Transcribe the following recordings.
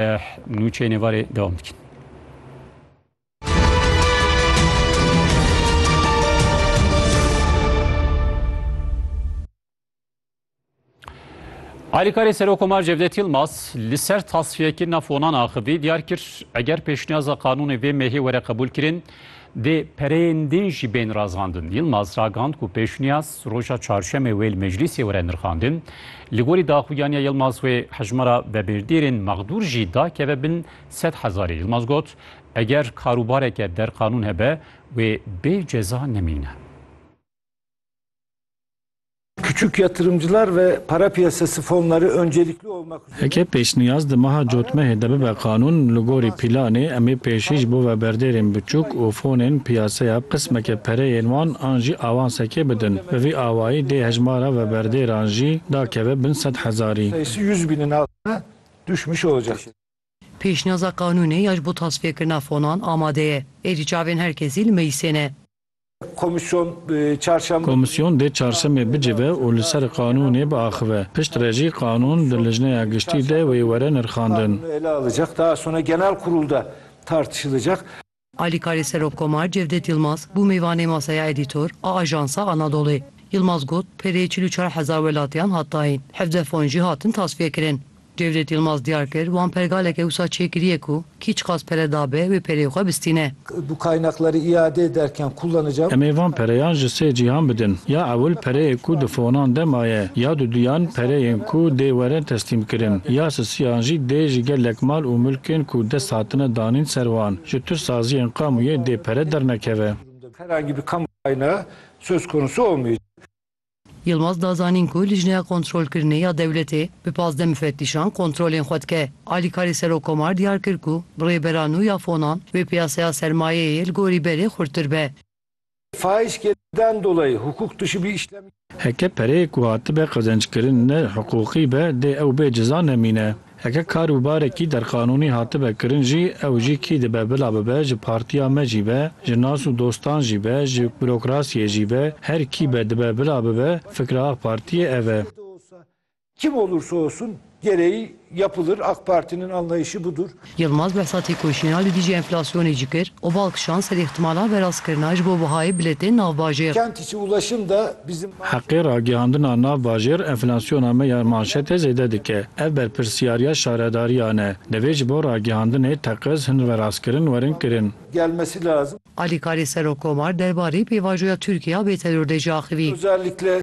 Eh nûçeyên êvarê dewam dikin. Alîkarê Serokomar Cevdet Yilmaz li ser tasfiyekirina fonan axivî diyar kir, eger pêşniyaza qanûnê vê mêhê were qebûl kirin, Dê pereyên din jî bên razandin. Yilmaz ragand ku pêşniyaz roja çarşemê wê li meclîsê were nirxandin. Li gorî daxuyaniya Yilmaz wê hejmara vebêrdêrên mexdûr jî dakeve bin sed hezarê. Yilmaz got, Eger karûbareke derqanûn hebe, wê bê ceza nemîne. Küçük yatırımcılar ve para piyasası fonları öncelikli olmak üzere. Eke pêşniyaz di meha cotmehê de bibe qanûn, li gorî pîlanê em ê pêşî ji bo veberdêrên biçûk û fonên piyaseya qismeke pereyên wan an jî awansekê bidin. Bi vî awayî dê hejmara veberdêran jî dakeve bin sed hezarî. Pêşnîyaza qanûnê ya ji bo tasfiyekirina fonan amade ye. Êdî çavên her kesî li meclîsê ne. Komîsyon çarşemb. Komîsyon dê çarşemê bicive û li ser qanûnê biaxive. Pişt re jî qanûn di Lijneya Giştî de wê were nirxandin. Alîkarê Serokkomar Cevdet Yilmaz bû mêvanê Masaya Edîtor a Ajansa Anadolê. Yilmaz got, Pêrê çil û çar hezar welatiyan hat dayîn, hevdeh fon jî hatin tasfiyekirin. Cevdet Yilmaz diyar kir, Wan pergaleke wisa çêkiriye ku kî çiqas pere dabe wê pereyê xwe bistîne. Bu kaynakları iade ederken kullanacağım. Em ê van pereyan ji sê cîhan bidin. Ya ewil pereyê ku di fonan de maye, ya duduyan pereyên ku dê werin teslîmkirin, ya sisiyan jî dê ji gelek mal û milkên ku dest hatine danîn ser wan. ji tu saziyên kamuyê dê pere dernekeve. Herhangî bir kamu kaynağı söz konusu olmayacak. Yilmaz da zanîn ku Lijneya Kontrolkirinê ya Dewletê bi pazdeh mifettîşan kontrolên xwe dike. Alîkarê Serokkomar diyar kir ku bi rêbera nû ya fonan wê piyaseya sermayeyê li gorî berê xurttir be. Faîz kêrden dolayî hukûk tişî bî îşlem. Heke pereyê ku hatibe qezenckirin ne hiqûqî be dê ew bê ciza nemîne. Heke kar û barekî derqanûnî hatibe kirin jî ew jî kî dibe bila bibe ji partîya me jî be, ji nas û dostan jî be, ji burokrasîyê jî be, her kî be dibe bila bibe fikra Ak Partîyê ev e. Kim olursa olsun gereği yapılır, AK Parti'nin anlayışı budur. Yilmaz behsa têkoşîna li dijî enflasyonê jî kir û bal kişand ser îhtimala verastkirina ji bo bihayê bilêtên navbajêr. Kent içi ulaşım da bizim Heqê ragihandina navbajêr enflasyona me ya manşetê zêde dike. Ev berpirsyariya şaredariyan e. Divê ji bo ragihandinê teqez hin verastkirin werin kirin. gelmesi lazım. Alîkarê Serokomar derbarê pêvajoya Tirkiye ya bêteror de jî axivî. Özellikle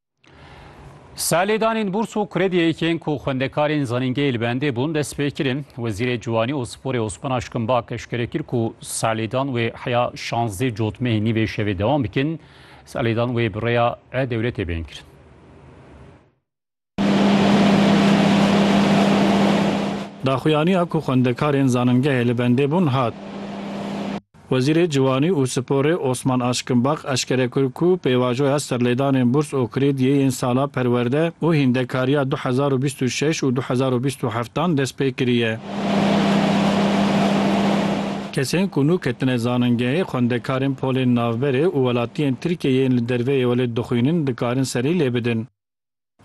Salêdanên bûrs û krediyeyên ku xwendekarên zanîngehê li bendê bûn dest pê kirin. Wezîrê Ciwanî û Sporê Osman Aşkimbak eşkere kir ku salêdan wê heya şazdeh cotmehê nîvê şevê dewam bikin. Salêdan wê bi rêya e-dewletê bên kirin. Daxuyaniya ku xwendekarên zanîngehê li bendê bûn hat. Wezîrê Ciwanî û Sporê Osman Aşkinbak eşkere kir ku pêvajoya serlêdanên bûrs û krêdiyê yên sala perwerde û hîndekariya du hezar û bîst û şeş û du hezar û bîst û heft dan dest pê kiriye. Kesên ku nû ketine zanîngehê, xwendekarên polên navberê û welatiyên Tirkiyeyê yên li derveyê welêt dixwînin dikarin serî lê bidin.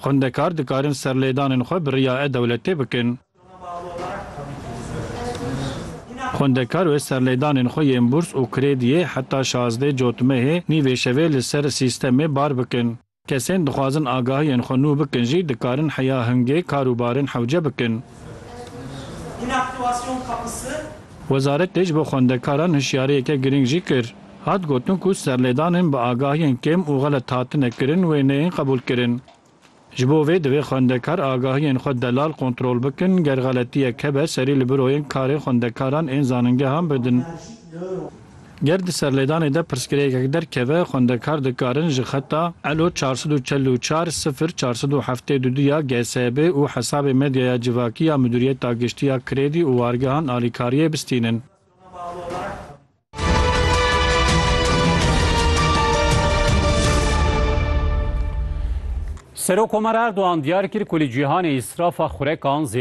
Xwendekar dikarin serlêdanên xwe bi riya e-dewletê bikin. Xwendekar wê serlêdanên xwe yên bûrs û krêdiyê heta şazdê cotmehê nîvê şevê li ser sîstemê bar bikin. Kesên dixwazin agahiyên xwe nû bikin jî dikarin heya hingê kar û barên hewce bikin. Wezaretê ji bo xwendekaran hişyariyeke girîng jî kir. Hat gotin ku serlêdanên bi agahiyên kêm û xelet hatine kirin wê neyên qebûlkirin. Ji bo vê divê xwendekar agahiyên xwe delal kontrol bikin, ger xeletiyek hebe serî li biroyên karê xwendekaran ên zaningehan bidin. Ger di serlêdanê de pirsgirêkek derkeve, xwendekar dikarin ji xeta elo çar sed û çel û çar sifir çar sed û heftê du du ya GSB û hesabê medyaya civakî ya Midûriyeta Giştî ya Krêdî û Wargehan alîkariyê bistînin. Serok Komar Erdogan diyar kir ku li cîhanê îsrafa xurekan zêde